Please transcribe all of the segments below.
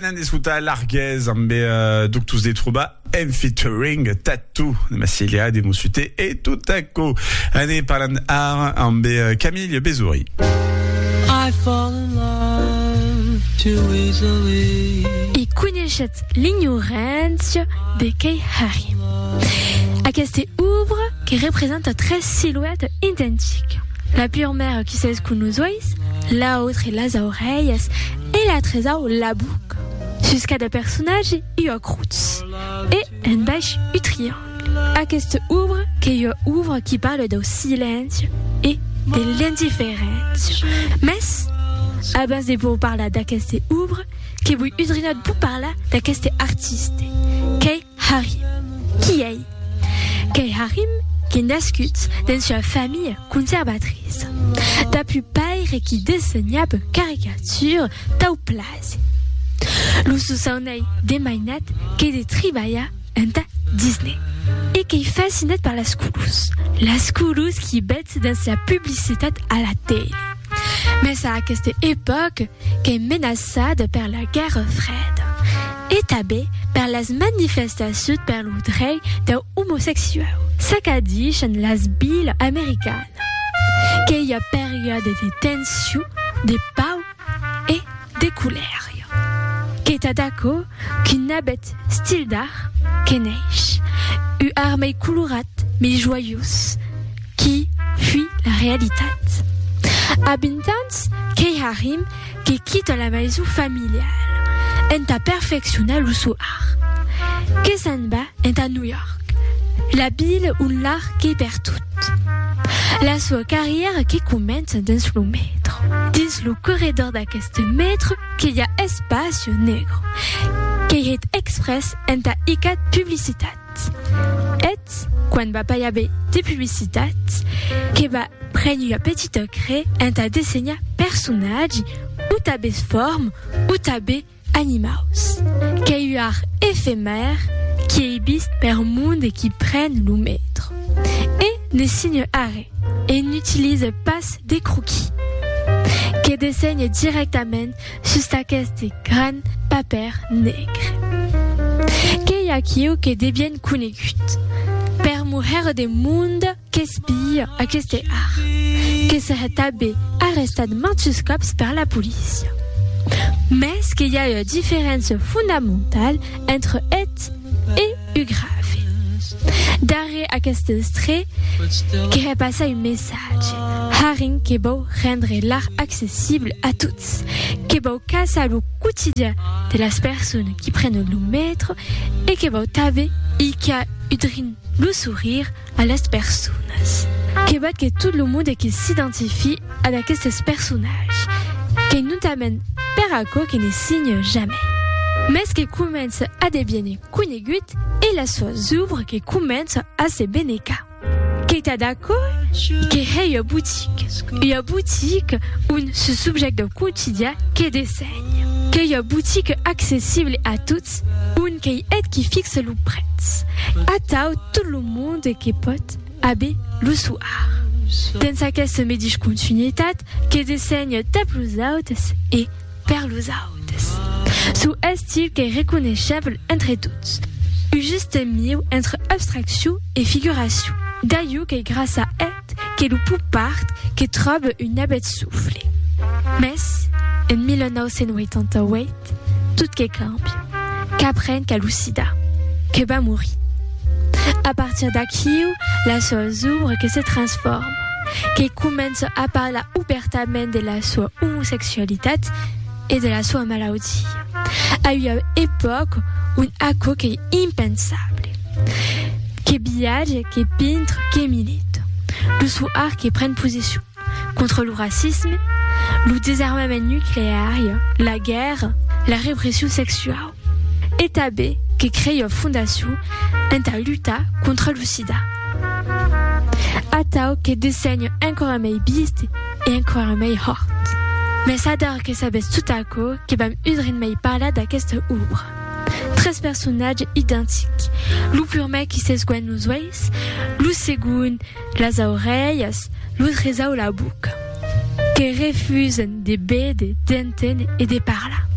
Anem d'escotar Larguez ambe Doctors de Trobar en featuring Tattoo de Massilia de Mossuté e Tutaco. Ane parlant ara ambe Camille Besory. I fall in love too easily. E coneishetz l'ignorància de qu'ei Harry. Aqueste ouvre que representa tres silueta identica, la purmèra qui s'escon los uèis, l'autre las aurelhas, e la tresau la buc sus cada personatge ua crutz e en baish u triangle. Aquesta obra qu'ei ua obra qui parle dau silenci e de l'indiferéncia. Mès abans de vos parlar d'aquesta obra que voi udrinat vos parlar d'aqueste artiste qu'ei Harry. Qui ei? Qu'ei Harry qu'ei nascut dens ua familha conservatriça. Dab un paire qui dessenhab caricatures tau plasi. Lo sosaun ei de mainat qu'ei de tribalhar entà Disney e qu'ei fascinat per las colors, las colors qui bètz dens la publicitat a la tele. Mès a aquesta epòca, qu'es menaçada per la Guèrra Freda e tanben per las manifestacions per lo drei dau omosexuau. S'acadishan las vilas americanas que i a periòdes de tension, de pau e de colèria. Qu'es tad aquò qu'un abet stil d'art que neish, u ar mei colorat, mei joiós, Qui fui la realitat? A 20 ans, qu'ei Harim que quita la maison familiale entà perfeccionar lo sò art, que s'en va entà New York, la ville ont l'art qu'ei pertot. La sua carrièra que comença dins lo metro. Dins lo corredor d'aqueste metro que i a Espacio Negro, qu'ei hèt exprès entà icat publicitat. Tat. Eth, quan va pair be de publicitat, que va prene ua petita cre entà dessenhar personatge, o tabes form, o tabe animaus. Qu'ei ua art efemèr qui ei vist per monde qui pren lo metro. E ne signe arre, e n'utilise pas de croquis. Que dessenhe directament Sus d'aqueste gran papèr negre. Qu'ei aquiu que de bien conegut. Per moher de monde qu'espia aqueste art. Que serè tabé arrestat mantus còps per la polícia. Mès que i a ua diferéncia fondamentala entre eth e u grave. Darrèr aqueste estrè querè passar un messatge. Haring que vòu rendre l'art accessible a tots. Ets que vau casar lo quotidian de las personas qui prenen lo metro e que vau tanbe hilhar udrin lo sourrir a las personas. Que vat que tot lo monde que s'identifie ad aquestes personatges, qu'ei notament per aquò que ne signe jamai, mès que comença a deviene conegut e las soas ouvres que començan a se benecar. Qu'ei tad aquò? Que hèi ua botique, ua botique on ce subjèct dau quotidian que dessenha. Qu'ei ua botique accessible a tots, on qu'ei eth qui fixe lo prètz. Atau tot lo monde que pòt aver l'usuar. Dens aquesta medish continuitat que dessenha tà plusautas e, Per los autes, çò estil qu'ei reconeishèble entre tots, uu juste miu entre abstraccion e figuracion, d'aiu qu'ei grassa eth que lo pop art que tròbe un nabet soufle. Mès, en 1988, tot que càmbia, qu'apren qu'a lo sida, que va morir. A partir d'aquiu, las sòus obres que se transformen. que comença a parlar obèrtament de la soa omosexualitat e de la soa malaudia, a ua epòca ont aquò qu'ei impensable. Que viatge, que pintre, que milita. Lo sò art que pren posicion contra lo racisme, lo desarmament nucleari, la guèrra, la repression sexuau. E tanben que crei ua fondacion entà lutar contra lo sida. Atau que dessenho enquara mei biist e enquara mei hòrt. Mès ador que sabètz tot aquò que vam udrin mei parlar d'aquesta òbra. Tres personatges identics, lo purmèr qui s'esguènh los uèis, lo segond, Las aurelhas lo tresau la boca que refusen de béder, d'enténer e de parlar.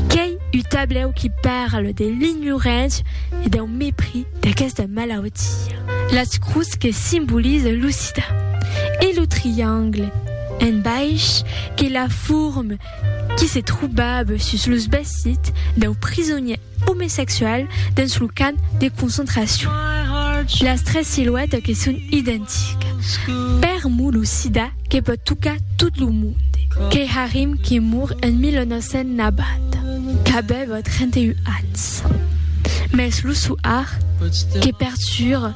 Qu'ei u tablèu qui parle de l'ignorància e dau mepris d'aquesta malautia. Las crus que simboliza lo sida e lo triangle en baish que la forme qui se trobava sus los vesits dau prisonièr omesexual dens lo camp de concentracion. Las tres siluètas que son identicas. Per mo lo sida que pòt tocar tot lo monde. Keharim qui mor en 1990, qu'avèva 31 ans. Mès lo soar que pertura.